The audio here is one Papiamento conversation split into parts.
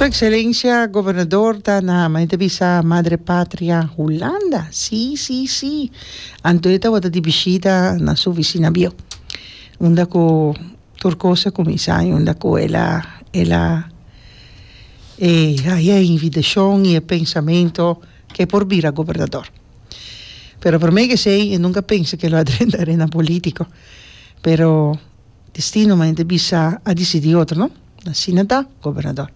Su Ekselencia Gobernador ta na mane ta bisa Madre Patria Hulanda? Sí, sí, sí. Anto e tabata di bishita na su oficina bio. Unda cu tur cos a cuminsa y unda cu el a, el a eh, haya e invitacion y e pensamento ke por bira Gobernador. Pero prome kesey e nunca a pensa ke lo a drenta arena politico. Pero. Destino mane ta bisa a disidi otro no asina ta gobernador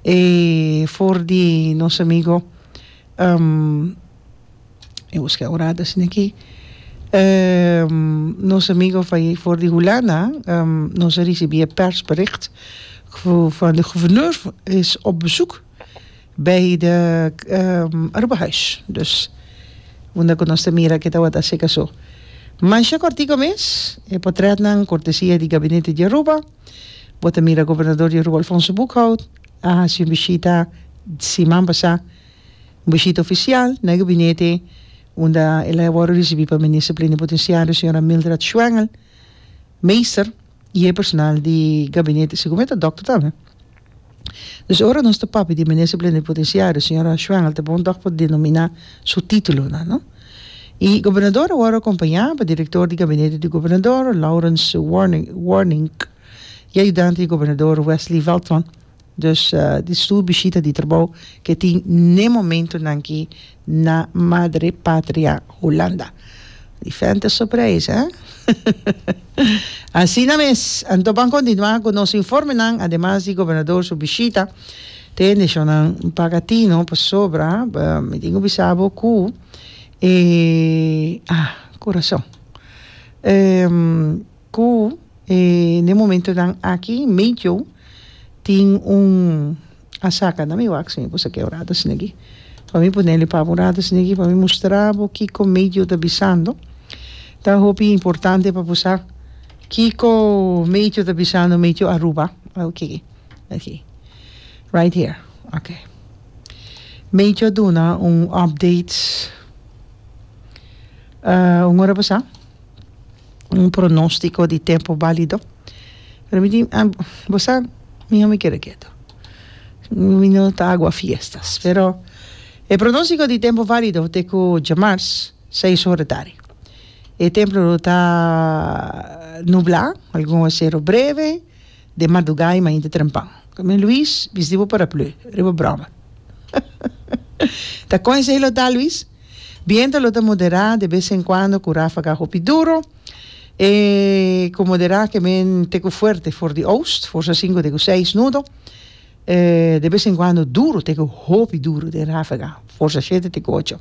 e for di nos amigo e busca ora ta asina aki nos amigo for di hulanda nos a ricibi e persbericht van de gouverneur is op bezoek Bay de Urbahuis dus unda cu nos ta mira ke tawata seka so. Masha cortico mes e portretnan cortesia di Gabinete di Aruba. Bo ta mira Gobernador di Aruba Alfonso Boekhout a haci un bishita siman pasa, un bishita oficial na e Gabinete unda el a worde ricibi pa Minister Plenipotenciario Señora Mildred Schwengel Meester. y e personal di gabinete si komo e ta dokter tambe. Dus ora nos ta papia di Minister Plenipotenciario señora Schwengel ta bon tog por denomina su titulonan no. Y Gobernador a wòrdu acompaña pa Director di Gabinete di Gobernador Laurens Warnink y Ayudante di Gobernador Wesley Veltman. Dus di su bishita di trabou ke tin n'e momentunan ki na Madre Patria Hulanda. Diferente su preis, eh? Asina mes, anto ban kontinuá ku nos informenan, ademas di Gobernador su bishita, ta hende shonnan paga tino pasobra mi tin ku bisa bo ku e, ah, kurason. Ku den momentonan aki medio tin un a saka na mi wak si mi por saka e orado snegi pa mi por neli pabo orado snegi pa mi mustra bo kiko medio ta bisando ta hopi importante pa bo sa kiko medio ta bisando medio Aruba oke aki right here oke medio a duna un update un ora pasa. un pronóstico di tempo bálido. Pero mi di, ah, bo sa, mi no mi keda ketu. Mi no ta agua fiestas. Pero e pronóstico di tempo válido te ku djemars, seis ora tarde. E templo lo ta nublá, algun aguacero breve. den madugá i mainta trempan. Min Luis, bisti bo paraplü riba broma. Ta kon esei lo ta, Luis? Bientu lo ta moderá de bes en kuando ku ráfaga hopi duro. E ku moderá ke men te ku fuerte for di oost, forsa sinku te ku seis nudo. E de bes en kuando duro te ku hopi duro den ráfaga, forsa shete te ku ocho.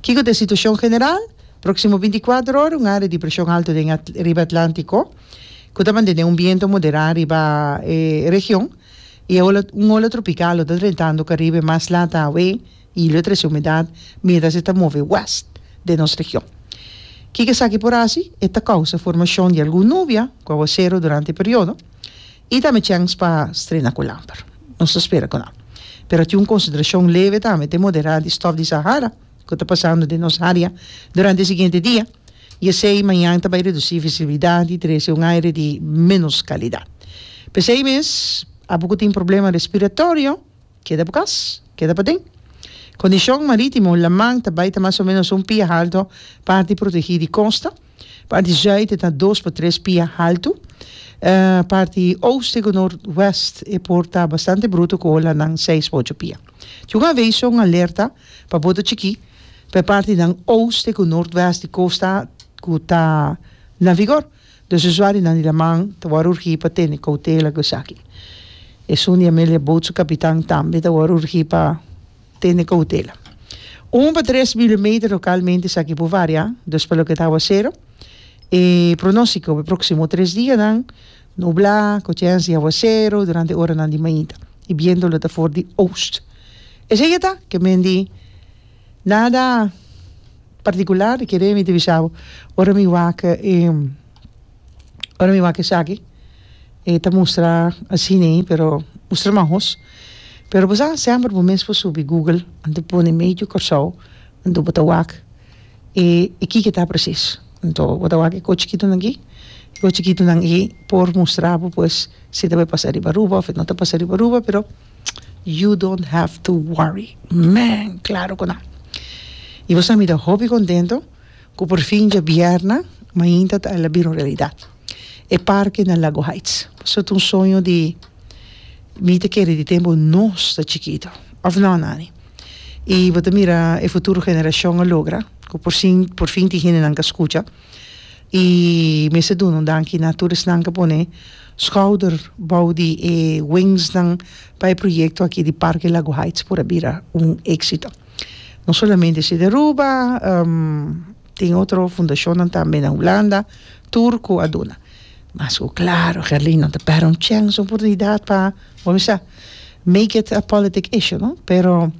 Kiko ta e situashon general? Próksimo binti kuater ora un área di preshon alto den riba Atlántiko. ku ta mantene un biento moderá riba e region i e ola un ola tropikal lo ta drentando Karibe mas lat awe i lo trese humidat mientras e ta move wèst den nos region. Kiko esaki por hasi? E ta kousa formashon di algun nubia ku aguasero durante e periodo i tambe chèns pa strena ku lamper. Nos ta spera ku nan pero tin un konsentrashon leve tambe te moderá di stòf di Sahara, ku ta pasando den nos área durante e siguiente dia i esei mañan ta bai redusí visibilidat i trese un aire di ménos kalidat. P'esei mes, abo ku tin problema respiratorio, keda bo kas, keda paden. Kondishon marítimo, laman ta bai ta mas o ménos un pia halto parti protegí di kosta. Parti zuid e ta dos pa tres pia haltu. Parti ooste ku nordwest e por ta bastante bruto ku olanan seis pa ocho pia. Tin un aveiso, un alerta, pa boto chikí pa e partinan ooste ku nordwest di kosta ku ta na vigor. Dus usuarionan di laman ta wòrdu urgí pa tene koutela ku esaki. Esun di Amelia Boot su kapitan tambe ta wòrdu urgí pa. Tene koutela. Un pa tres milimeter lokalmente esaki por variá dus pa loke ta awasero. E pronóstiko pa e próksimo tres dianan, nublá ku chèns di awasero durante oranan di mainta. E biento lo ta for di ost. Esei e ta ke men di nada partikular, kere mi ta bisabo ora mi wak e. Ora mi wak esaki e ta mustra asina ei pero mustra mas hos pero bo sa semper bo mes por subi google anto pone medio Kòrsou anto bo ta wak e e kiko ta presis anto bo ta wak e kochi kitonan aki e kochi kitonan aki por mustra bo pues si ta bay pasa riba Aruba of e no ta pasa riba Aruba pero you don't have to worry mèn claro ku nan y bo sa mira hopi contento. Cu por fin djabierna mainta ta ala bira un realidad. E parke na Lago Heights. Pasobra ta un soño di mi ta kere di tempo nos ta chikito. Of no Nani? Y bo ta mira e futuro generacion a logra cu por sin por fin tin hendenan cu a scucha. Y mester duna un danki na tur esnan cu a pone schouder bou di e wingsnan pa e proyecto aki di Parke Lago Heights por a bira un exito. No solamente si di Aruba, tin otro fundacionnan tambe na Hulanda, tur cu a duna. Mas cu claro, Gerlin, nan ta perde un chèns, un oportunidad pa, bo a bisa, make it a politic issue, no? Pero,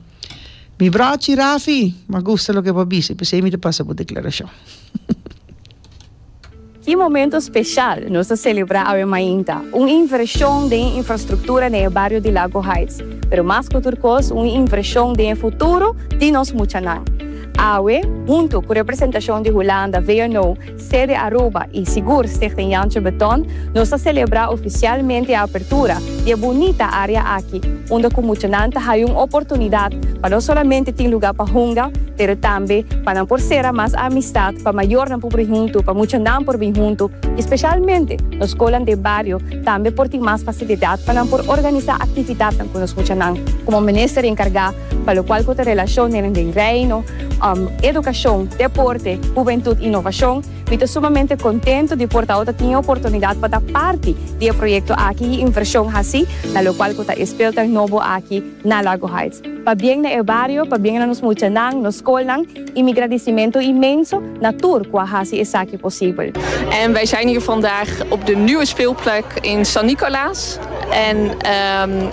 mi brochi Rafi, m'agusta loke bo a bisa, i p'esei mi ta pasa bo declaracion. E momento special nos a celebra awe mainta, un inversion den e infrastructura den e bario di Lago Heights, pero mas cu tur cos un inversion den e futuro di nos muchanan. Awe, hunto cu representacion di Hulanda, VNO, sede Aruba y sigur Stichting Jantje Beton, nos a celebra oficialmente e apertura, di e bunita área aki, unda ku muchanan ta haya un oportunidat pa no solamente tin lugá pa hunga, pero tambe pa nan por sera mas amistat, pa mayornan por bini huntu, pa muchanan por bini huntu i spesialmente nos skolan den bario tambe por tin mas fasilidat pa nan por organisá aktividatnan ku nos muchanan. Komo minister enkargá pa lokual ku ta relashonnan den Reino, edukashon, deporte, hubentut i novashon, Mi ta sumamente contento di por ta awor ta tin e oportunidad pa ta parti di e proyecto aki y inversion haci na locual cu ta e speeltuin nobo aki na Lago Heights. Pa bien na e bario, pa bien na nos muchanan, nos scolnan y mi gradicimento inmenso na tur cu a haci esaki posibel. En wij zijn hier vandaag op de nieuwe speelplek in San Nicolaas. En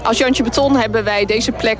als Jantje Beton hebben wij deze plek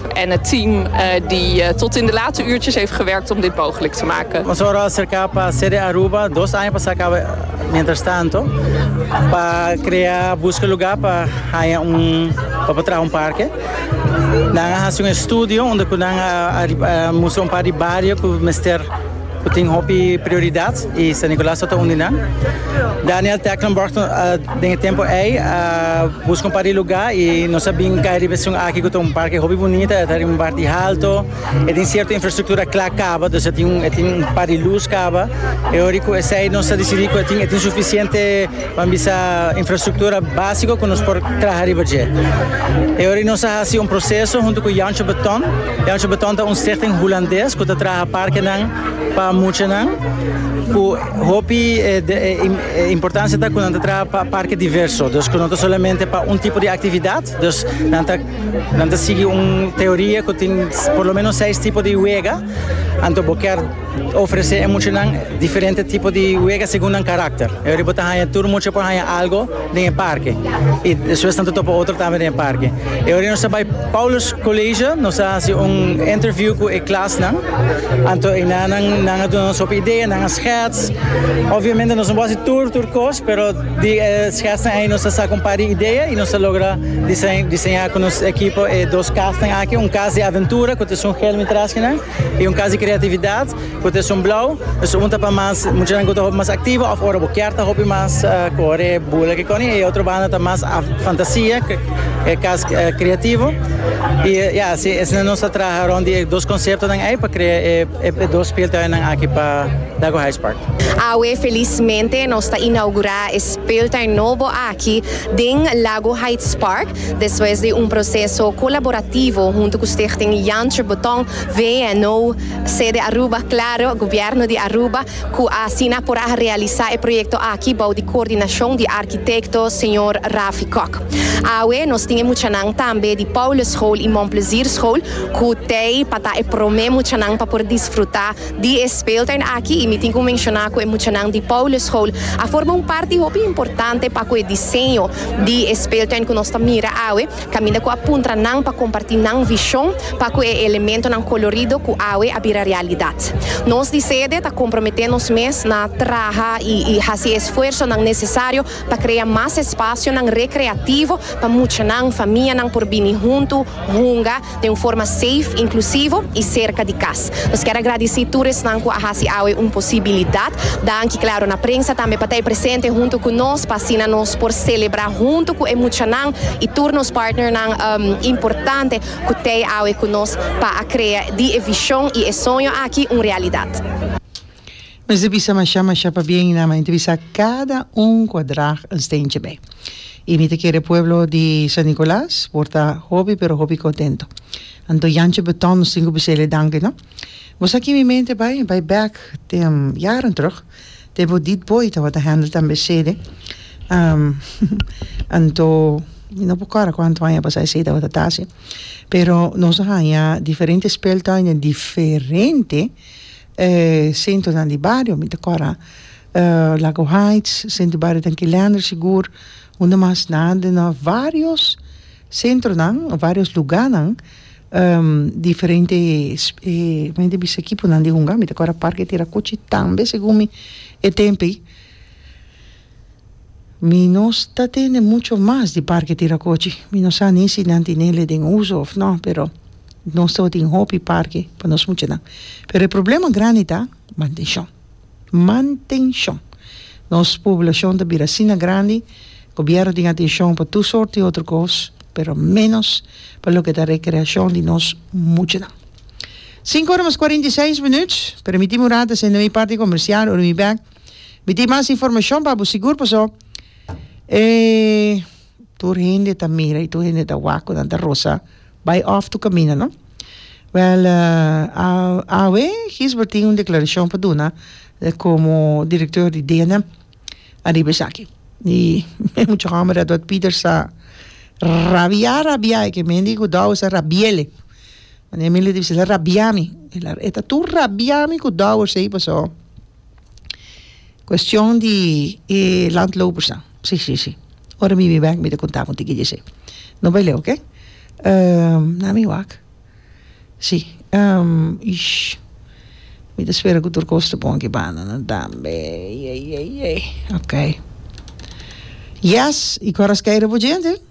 En het team di tot in de late uurtjes heeft gewerkt om dit mogelijk te maken. Nos ora acerca pa sede Aruba dos aña pasa caba mientras tanto pa crea busca lugar pa haya un pa por traha un parke. Nan a haci un estudio unda cu nan a mustra un par di bario cu mester. Ku tin hopi prioridat i San Nikolaas ta ta un di nan. Daniel Tecklenburg den e tempu ei a buska un par di lugá i nos a bin kai riba esun aki ku ta un parke hopi bunita. E ta riba un parti haltu, e tin sierto infrastruktura kla kaba, dus e tin un par di lus kaba. E ora ku esei nos a disidí ku e tin sufisiente. Pan bisa infrastruktura básiko ku nos por traha riba dje. E ora ei nos a hasi un proseso huntu ku Jantsje Beton. Jantsje Beton ta un stichting hulandes ku ta traha parkenan pa muchanan ku hopi importansia ta ku nan ta traha pa parke diverso, dus ku no ta solamente pa un tipo di aktividat. Dus nan ta nan ta sigui un teoria ku tin por lo menos seis tipo di wega, anto bo kèr. Ofresé e muchanan diferente tipo di wega segun nan karakter. Ora bo ta haña, tur mucha por haña algu den e parke. I despues nan ta topa otro tambe den e parke. E ora nos a bai Paulus Colegio, nos a hasi un interview cu e klasnan. Anto eynan nan, nan a duna nos hopi idea, nan a schets. Obviamente nos no por hasi tur, tur cos, pero di e schetsnan ey nos a saca un par di idea y nos a logra dise-diseña cu nos ekipo e dos casnan aki. Un cas di aventura cu ta esun helmi tras di nan. E un kas di kreatividat ku ta esun blou. Nos ta punta pa mas muchanan ku ta hopi mas aktivo òf ora bo kier ta hopi mas kore bula kikoni. E otro banda ta mas fantasia, e kas kreativo. I ya, si esnan nos a traha rònt di e dos konseptonan ei pa krea e dos speeltuinnan aki pa Dago High Spark. Awe felismente nos ta inaugurá e speeltuin nobo aki den Lago High Spark. Despues di un proseso colaborativo hunto cu Stichting Jan Tributon, VNO, Sede Aruba, Claro, Gobierno di Aruba, cu asina por a realisa e proyecto aki bou di coordinacion di architecto señor Rafi Kok. Awe nos tin e muchanan tambe di Paulus School y Mon Plezier School cu tey pa ta e prome muchanan pa por disfruta Di e speeltuin aki, y mi tin cu menciona cu e muchanan di Paulus School a forma un parti hopi importante pa cu e diseño di e speeltuin cu nos ta mira awe, caminda cu a puntra nan pa comparti nan vision pa cu e elementonan colorido cu awe a bira realidad. Nos di sede ta compromete nos mes na traha y haci e esfuersonan necesario pa krea mas espasionan rekreativo pa muchanan, famianan por bini huntu hunga den un forma safe, inklusivo i serka di kas. Nos kier a gradisí tur esnan ku a hasi awe un posibilidat. Danki, klaro, na prensa tambe pa ta presente huntu ku nos pa asina nos por selebrá huntu ku e muchanan i tur nos partnernan importante ku tei awe ku nos pa a krea di e vishon i e soño aki un realidat. Nos ta bisa mashá mashá pabien na mi ta bisa kada un kua drag un steentje bai. I mi ta kere pueblo di San Nicolas por ta hopi pero hopi kontento. Anto Yantje Beton nos tin ku bisele danki no. Bo sa ki mi mente bai? Bai bèk den yaren terug tempo Died Boy tabata hèndel tambe sede. Anto mi no por kòrda kuantu aña a pasá esei tabata ta hasi pero nos a haña diferente speltuin den diferente E sentronan di bario mi ta kòrda Lago Haits, sentro di bario den Kilander sigur, unda mas na den nò vários sentronan, vários lugánan diferente mi ta bisa kiponan di hunga, mi ta kòrda Parke Tirakuchi tambe segun mi e tempu ei. Mi no ta tende mucho mas di parke Tirakochi. Mi no sa ni si nan tinele den uso of no, pero nos tabatin hopi parke pa nos muchanan. Pero e problema grandi ta mantenshon. Mantenshon. Nos poblashon ta bira asina grandi, gobièrnu tin atenshon pa tur sort di otro kos, pero ménos pa loke ta rekreashon di nos muchanan. Sinku ora mas kuarenta i seis minüt. Permitimi un rata sende mi parti komersial, ora mi bèk. Mi tin mas informashon pa bo sigur paso e tur hende ta mira y tur hende ta wak cu nan ta rosa bay off tu camina no wel awe Gisbert tin un declaracion pa duna como director di dena ariba esaki y e mucha homber Edward Peters sa rabia rabia y kier mi a dico douwe sa rabiele manera mi lo dibi si el a rabiami e ta tur rabiami cu douwers ey paso. Cuestion di e landlopers nan si si si ora mi bin bek mi ta conta bo un tikitje esey no bay leu ok na mi wak si mi ta spera cu tur cos ta bon aki banda nan tambe eyeyeyey ok yes y cu aras key riba djente.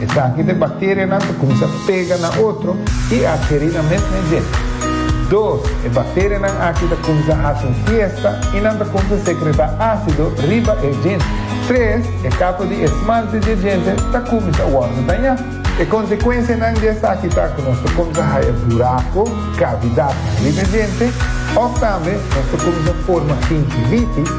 Esaki de bacterianan ta cuminsa pega na otro y adheri na mesme djente. Dos, e bacterianan aki ta cuminsa haci un fiesta y nan ta cuminsa secreta acido riba e djente. Tres, e capa di esmalte di e djente ta cuminsa wordo daña. E consecuencianan di esaki ta cu nos ta cuminsa haya buraco, cavidad, riba e djente of tambe nos ta cuminsa forma gingivitis,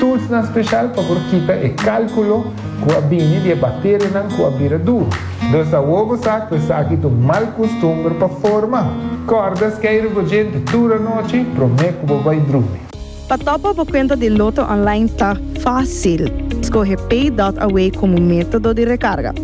Toolsnan special pa por kita e calculo cu a bini di e bacterianan cu a bira duru. Dos awor bo sa cu esaki ta un mal custumber pa forma. Cordas kei rugojente tur anochi prome cu bo bay drumi. Pa topa bo cuenta di Lotto Online ta facil. Scoge Pay dot Away como metodo di recarga.